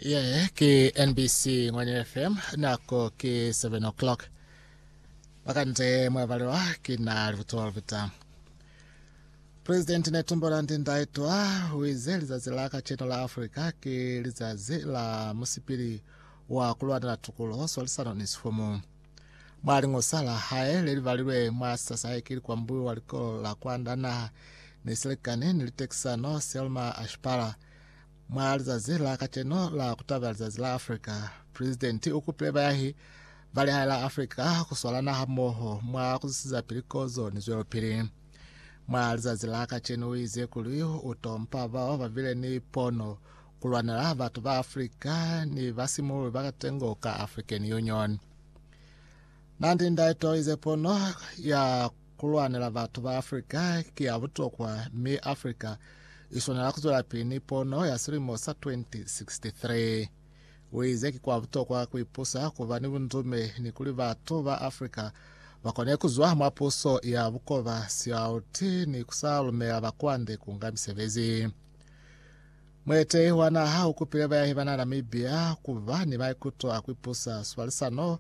Ye ke NBC Ngwanya FM nako ke 7 o'clock. Bakante mwabalwa ke na libuto lipita. President Netumbo Nandi Ndaitwa uize lizazi la kacheno la Africa ke lizazi la musipili wa kulwanela tukulo, swalisano ni sifumu. Mwa liñosa la hae le li balilwe mwa Sasayeki Likwambulo wa Likolo la Kwanda Naha ni Silikani ni Litekisano, Selma Ashpara, mwa lizazi la kacenu la kutaba lizazi la Afrika, Pulezidenti u kupile bayahi ba lihae la Afrika ku swalana hamoho mwa ku zwisizapili kozo ni zwelopili. Mwa lizazi la kacenu u ize kuli u tompa bao ba bile ni pono Ku lwanela batu ba Africa ni basimululi ba katengo ka African Union. Na ndi ndaeto ize pono ya ku lwanela batu ba Africa ki ya butokwa mi Africa i swanela ku zwelapili ni pono ya silimo sa 2063. Uize ki kwa butokwa ku ipusa, ku ba ni bundume ni kuli batu ba Africa ba kone ku zwa mwa puso ya bukoba, sialuti ni ku sa lumela bakwande ku nga misebezi. Muetehi wa naha u kupile bayahi ba Namibia ku ba ni maikuto a ku ipusa swalisano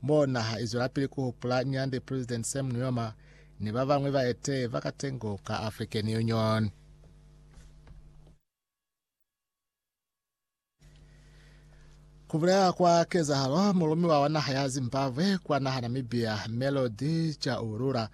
mo naha i zwelapili ku hupula Nyande President Sam Nujoma ni ba bañwi baetehi ba katengo ka African Union. Ku bulela kwa kezahalo, mulumiwa wa naha ya Zimbabwe kwa naha Namibia, Melody Chaulula,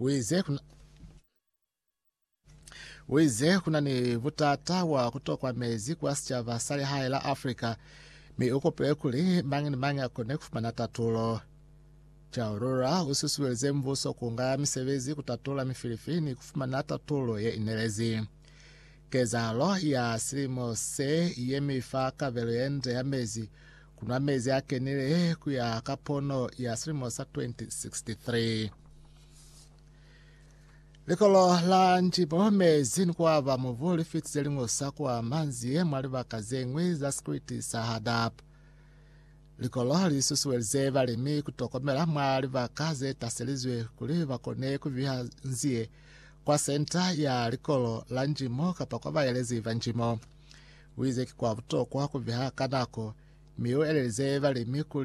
Uize kuna, uize kuna ni butata bwa kutokwa mezi kwa sicaba sa lihae la Africa, mi ukupile kuli mañi ni mañi akone kufumana tatulo. Chaurura ususuelize mbuso kunga misebezi kutatola mifilifi ni kufumana tatulo ye inelezi. Kezahalo ya silimo se yemi fa kabelo ye nde ya mezi ku nwa mezi a kenile ku ya ka pono ya silimo sa 2063. Likolo la Njibo, mezi ni kuaba mubu li fitize liño sa kwa manzi mwa libaka ze ñwi za sikriti sa Hadab. Likolo li susuelize balimi ku tokomela mwa libaka ze taselizwe kuli ba kone ku biha nzie kwa Senta ya Likolo la Njimo kapa kwa baelezi ba njimo. Uize ki kwa butokwa kubeha ka nako mi uelelize balimi kuli